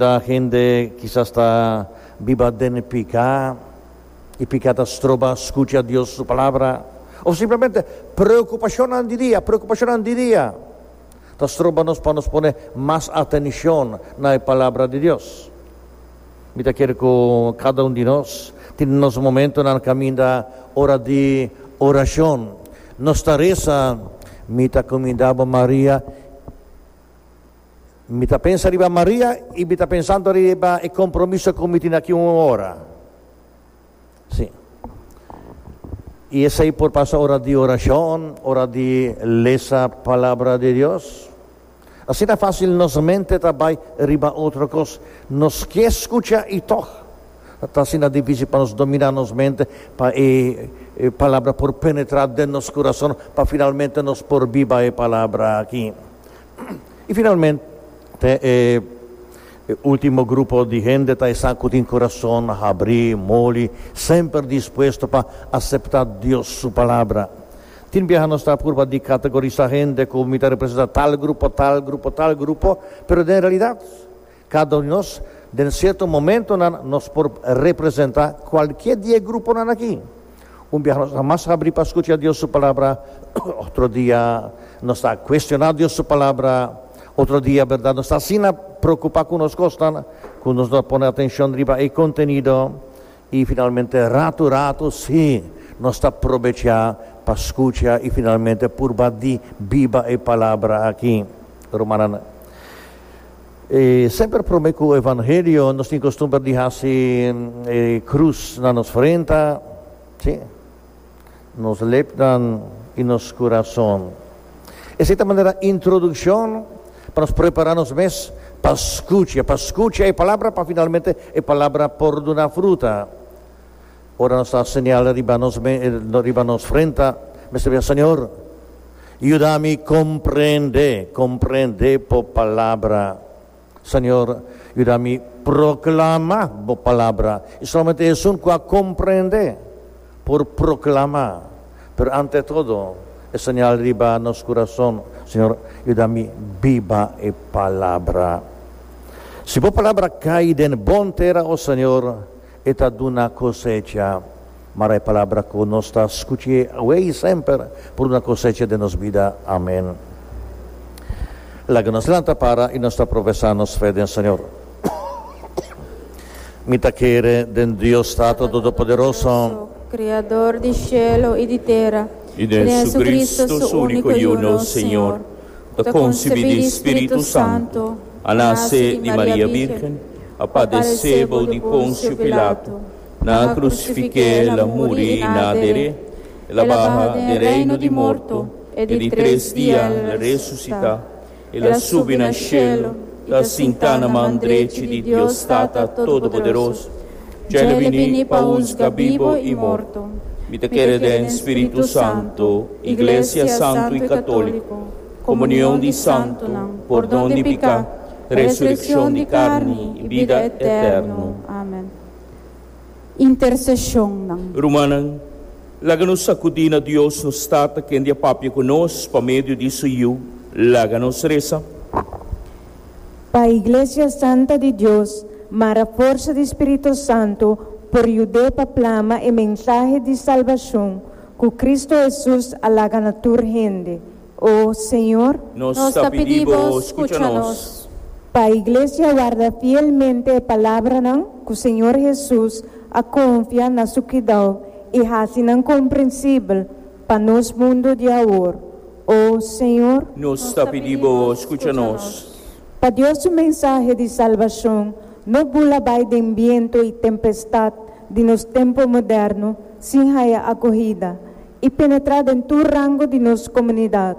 Ta hende kisas ta biba den e piká, i piká ta stroba skucha Dios su Palabra. Òf simplemente preokupashonnan di dia, preokupashonnan di dia ta stroba nos pa nos pone mas atenshon na e Palabra di Dios. Mi ta kere ku kada un di nos tin nos momentunan kaminda ora di orashon. Nos ta resa, Mi ta kumindá bo, Maria. Mi ta pensa riba Maria i mi ta pensando riba e compromiso cu mi tin aki un ora. Si. I esey por pasa ora di oracion, ora di lesa Palabra di Dios. Asina facil nos mente ta bay riba otro cos. Nos ke scucha i tog ta asina dificil pa nos domina nos mente pa e Palabra por penetra den nos curason pa finalmente nos por biba e Palabra aki. I finalmente e ultimo grupo di hende ta esnan ku tin kurason habrí, moli, semper dispuesto pa aseptá Dios su Palabra. Tin biaha nos ta apur pa di kategorisá hende ku mi ta representá tal grupo, tal grupo, tal grupo, pero den realidat Cada un di nos, den cierto momentonan, nos por representa cualkier di e gruponan aki. Un biaha nos ta mas habri pa scucha Dios su Palabra, otro dia nos ta cuestiona Dios su Palabra, otro dia, berdad, nos ta asina preocupa cu nos cosnan, cu nos no ta pone atencion riba e contenido, y finalmente rato rato si, nos ta probecha pa scucha y finalmente purba di biba e Palabra aki. Rumannan, E semper prome ku evangelio nos tin kostumber di hasi e krus na nos frenta, si, nos lepnan i nos kurason. Esei ta manera introdukshon pa nos prepará nos mes pa skucha, pa skucha e palabra pa finalmente e palabra por duna fruta. Ora nos ta señal riba nos riba nos frenta mester bia Señor yuda mi comprende comprende bo palabra Señor yuda mi proclama bo palabra y solamente esun cu a comprende por proclama pero ante todo e señal riba nos curason Señor yuda mi biba e palabra si bo palabra cay den bon tera oh Señor E ta duna cosecha. Mara e palabra cu nos ta scuch'e awe y semper por duna cosecha den nos bida. Amen. Laga nos lanta para y nos ta profesa nos fe den Señor. Mi ta kere den Dios Tato Todopoderoso. Criador di cielo y di tera, y den Jesucristo, Su unico y uno Señor. Bo ta konsibí di Spiritu Santu, a nase di Maria Bírgen, a padesé bou di Ponsio Pilato, nan a krusifiké El, a muri i nan a der'é, El a baha den reino di morto e di tres dia El a resusitá, El a subi na shelu, ta sintá na man drechi di Dios Tata Todopoderoso. Dje le bini pa husga bibo i morto. Mi ta kere den spiritu santo, iglesia santu i katoliko, komunion di santunan, pordon di piká, resurekshon di karni i bida eterno. Amen. Interseshonnan. Rumannan, laga nos sakudí na Dios nos Tata, kende a papia ku nos pa medio di su Yu. Laga nos resa. Pa Iglesia Santa di Dios mara forsa di Spirito Santo por yud'é pa plama e mensahe di salbashon ku Kristu Hesus a laga na tur hende. O Señor. Nos ta pidi Bo skucha nos. Pa Iglesia warda fielmente e palabranan ku Señor Hesus a konfia na Su kidau i hasi nan komprensibel Pa nos mundo di awor, o Señor. Nos ta pidi Bo, skucha nos. Pa Dios su mensahe di salbashon no bula bai den biento i tempestad di nos tempu moderno sin haya akohida i penetrá den tur rango di nos komunidad.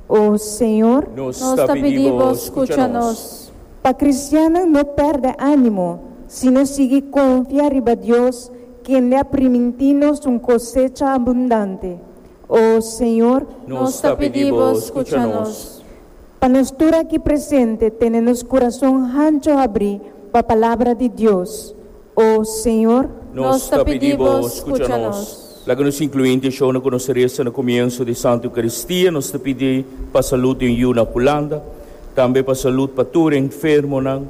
O Señor, nos ta pidi Bo skucha nos. Pa kristiannan no pèrdè ánimo, sino sigui konfia riba Dios kende a primintí nos un kosecha abundante. O Señor, nos ta pidi Bo skucha nos. Pa nos tur aki presente tene nos kurason hancho habrí pa palabra di Dios. O Señor, nos ta pidi Bo scucha nos. Laga nos inclui un intentiona cu nos ta reza na comienso di Santo Eucaristia. Nos ta pidi pa salud den yu na Hulanda, tambe pa salud pa tur enfermonan.